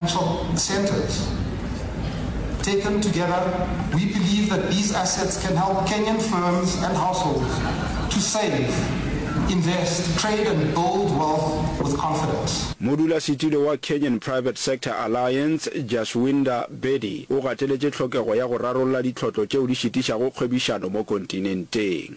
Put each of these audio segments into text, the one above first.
Financial incentives. Taken together, we believe that these assets can help Kenyan firms and households to save, invest, trade and build wealth with confidence. Modulasetulo wa Kenyan Private Sector Alliance, Jaswinder Bedi, o gateletše tlhokego ya go rarolla ditlhotlo tšeo di šitišago kgwebišano mo kontinenteng.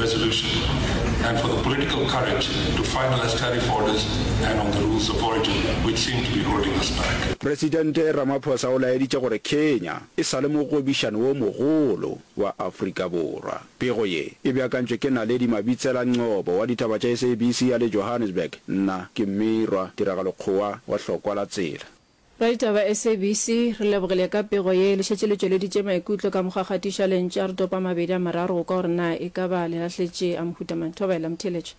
resolution and for the political courage to finalize tariff orders and on the rules of origin which seem to be holding us back. Presidente Ramaphosa o laeditše gore Kenya e sa le mogwebišani wo mogolo wa Afrika Borwa. Pego ye e beakantšwe ke Naledi Mabitsela Nqobo wa ditaba tša SABC ya le Johannesburg. Nna ke Mmirwa Tiragalo Kgowa wa Hlokwa la Tsela. Raditaba SABC, Re lebogile ka pego ye, le šetše le tšweleditše maikutlo ka mokgwa kgatiša le ntša re topa a mabedi a mararo go kwa gore na e ka ba le lahletše a mohuta mang. Thobela, Motheeletša.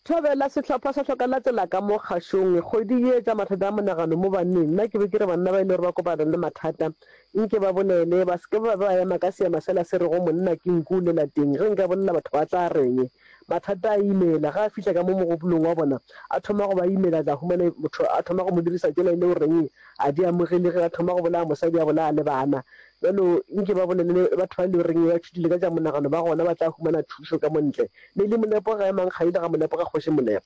Thobela, Sehlopha sa hloka latela ka mo kgašong. Kgwedi ye tša mathata a monagano mo banneng, nna ke be ke re banna ba e le gore ba kopana le mathata nke ba bolele, ba se ke ba ba ema ka seema sela se rego monna ke nku o lela teng, ge nka bolela batho ba tla reng? Mathata a imela. Ge a fihla ka mo mogopolong wa bona, a thoma go ba imela, a tla humana motho a thoma go mo dirisa tšela e le o reng a di amogele ge a thoma go bolaya mosadi a bolaya le bana. Bjalo nke ba bolelele batho ba e le o reng ba tšhutile ka tša monagano ba gona ba tla humana thušo ka mo ntle. Mme le Molepo ga emang kgadi le ga Molepo ga Kgoši Molepo.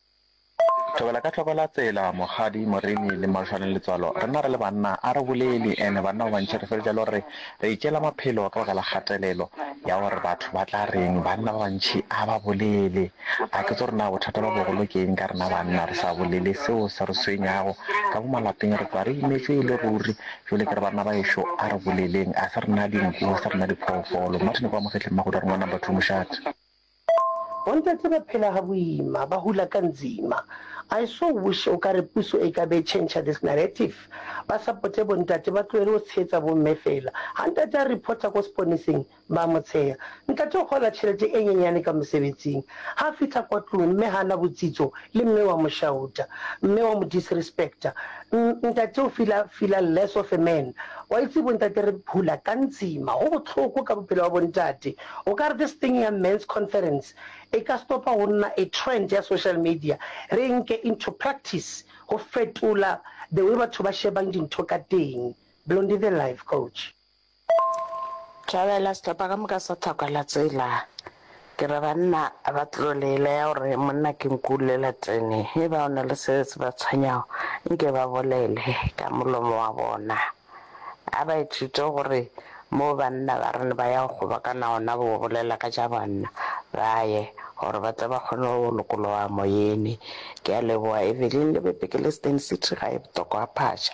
Thobela ka hloko la tsela, mokgadi, moremi, le mašwane le letswalo, rena re le banna a re boleli, and banna ba bantši re feletša e le gore re itšeela maphelo ka baka la kgatelelo ya gore batho ba tla reng. Banna ba bantši a ba bolele. A ke tso re na bothata ba bogolo ke eng ka rena banna re sa bolele seo se re swenyago ka mo malapeng, re kwa re imetšwe e le ruri. Jole ke re banna ba ešo a re boleleng, a se rena dinku, a se rena diphoofolo. Martin kwa Mogetleng Magodi a re ngwana Batho Mošate. Bontate ba phela ga boima, ba hula ka nzima. I so wish o ka re puso e ka be e change this narrative, ba supporte bontate ba tlohele go tshehetsa bomme fela. Ha ntate a reporta ko seponeseng, ba mo tsheha. Ntate o gola tšhelete e nyenyane ka mosebetsing. Ha fihla kwa tlung, mme ha na botsitso le mme wa mo shauta. Mme wa mo disrespecta. N, ntate o feel-a, feel-a less of a man. Wa itse bontate re hula ka nzima, go bohloko ka bophelo ba bontate. O ka re this thing ya Men's Conference e ka stopa go nna a trend ya social media, re e nke into practice go fetola the way batho ba shebang dintho ka teng. Blondie the live coach. Thabela, Sehlopha ka moka sa Thakwa la tsela. Ke re banna ba tlo le laya gore monna ke nku lela tsene. Eba o na le se se ba tshwenyago nke ba bolele ka molomo wa bona. A ba ithute gore moo banna ba re ba ya go kgobokana gona go bolela ka tša banna, ba ye, gore ba tle ba kgone go lokologa moyene. Ke a leboga, Evelyn. Le be Bhekeleistan City ga e botokwa phatša.